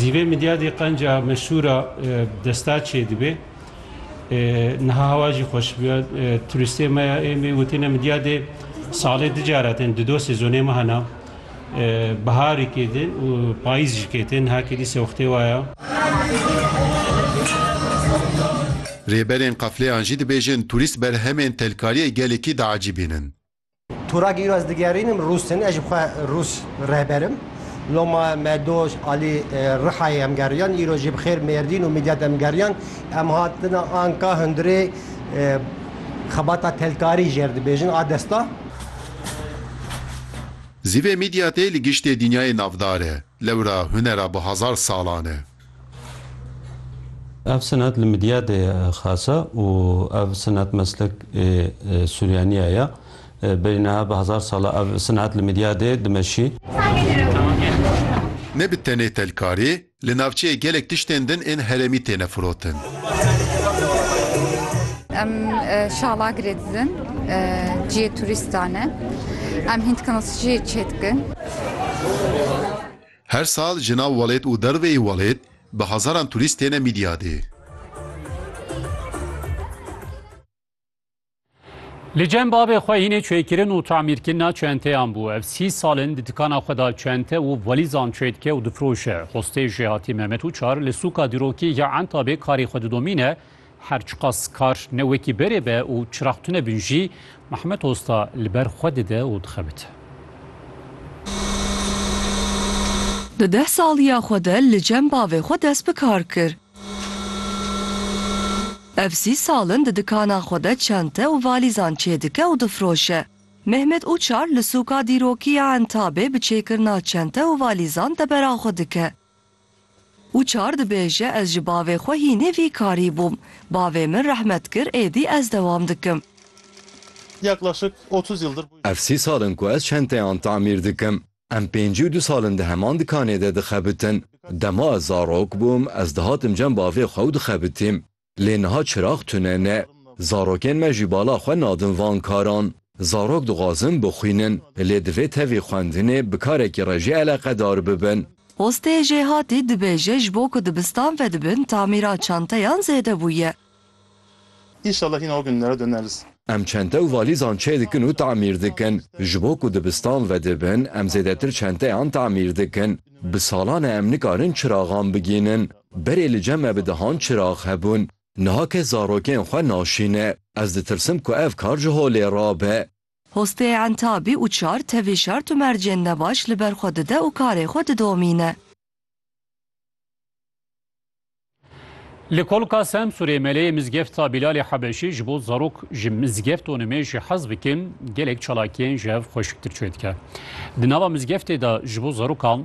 Zîvê midyadê qenca meşhûra desta çêdibê. Niha hewa jî xweş biya. Turistê me ya êmê witîne midyadê salê di cara tên di do sezonê me hena. Biharî kêdin û payîz jî kêtin. Niha kêdî sewxtê waya. Rêberên qefleyan jî dibêjin turîst berhemên telkariyê gelekî diecîbînin. Turak îro ez digerînim Rûsin, ez ji xwe Rûs rehberim. Loma Medoş alî e, Rihayê em geriyan, îro jî bi xêr Mêrdîn û Midyat em geriyan. Em hatina anka hundirê e, xebata telkarî jêr dibêjin a desta. Zîvê Midyatê li giştê dînyayê navdar e. Lewra hunera bi hezar salan e. Ev senet li Midyadê ye xase û ev senet meslek ê Suryaniya ye. Berî niha bi hezar sal e ev senet li Midyadê dimeşî. Ne bi tenê telkarî, li navçeyê gelek tiştên din ên herêmî têne firotin. Em şala girê didin, ciyê turîstan e. Em hîn dikin û siciyê çêdikin. Her sal ji nav welêt û derve yê welêt bi hezaran turîst têne Mîdyadê. Li cem bavê xwe hînê çêkirin û tamîrkirina çenteyan bû. Ev sî sal in di dikana xwe de çente û velîzan çê dike û difiroşe. Xwestê Jêhatî Mehmet Uçar li sûka dîrokî ya Entabê karê xwe didomîne Her çiqas kar ne wekî berê be û çirax tune bin jî, Mehmet Osta li ber xwe dide û dixebite. Di deh saliya xwe de li cem bavê xwe dest bi kar kir. Ev sî sal in di dikana xwe de çente û valîzan çêdike û difiroşe. Mehmet Uçar li sûka dîrokî ya Entabê bi çêkirina çente û valîzan debera xwe dike. Û çar dibêje ez ji bavê xwe hînê vî karî bûm. Bavê min rehmet kir êdî ez dewam dikim. Ev sî sal in ku ez çenteyan tamîr dikim. Em pêncî û du sal in di heman dikanê de dixebitin. Dema ez zarok bûm ez dihatim cem bavê xwe û dixebitîm. Lê niha çirax tune ne. Zarokên me jî bala xwe nadin van karan. Zarok dixwazin bixwînin, lê divê tevî xwendinê bi karekî re jî eleqedar bibin. Postê Jêhatî dibêje ji bo ku dibistan vedibin tamîra çanteyan zêde bûye. Înşallah hîna wek nûnera döneris. Em çente û valîzan çêdikin û tamîr dikin. Ji bo ku dibistan vedibin em zêdetir çenteyan tamîr dikin. Bi salan e em nikarin çiraxan bigînin. Berê li cem me bi dehan çirax hebûn. Niha kes zarokên xwe naşîne. Ez ditirsim ku ev kar ji holê rabe. Hostê Entabî û çar tevî şert û mercên nebaş li ber xwe dide û karê xwe didomîne. Li Kolka Semsûrê Meleyê Mizgefta Bîlalê Hebeşî ji bo zarok ji mizgeft û nimêjê hez bikin gelek çalakiyên ji hev xweşiktir çêdike. Di nava mizgeftê de ji bo zarokan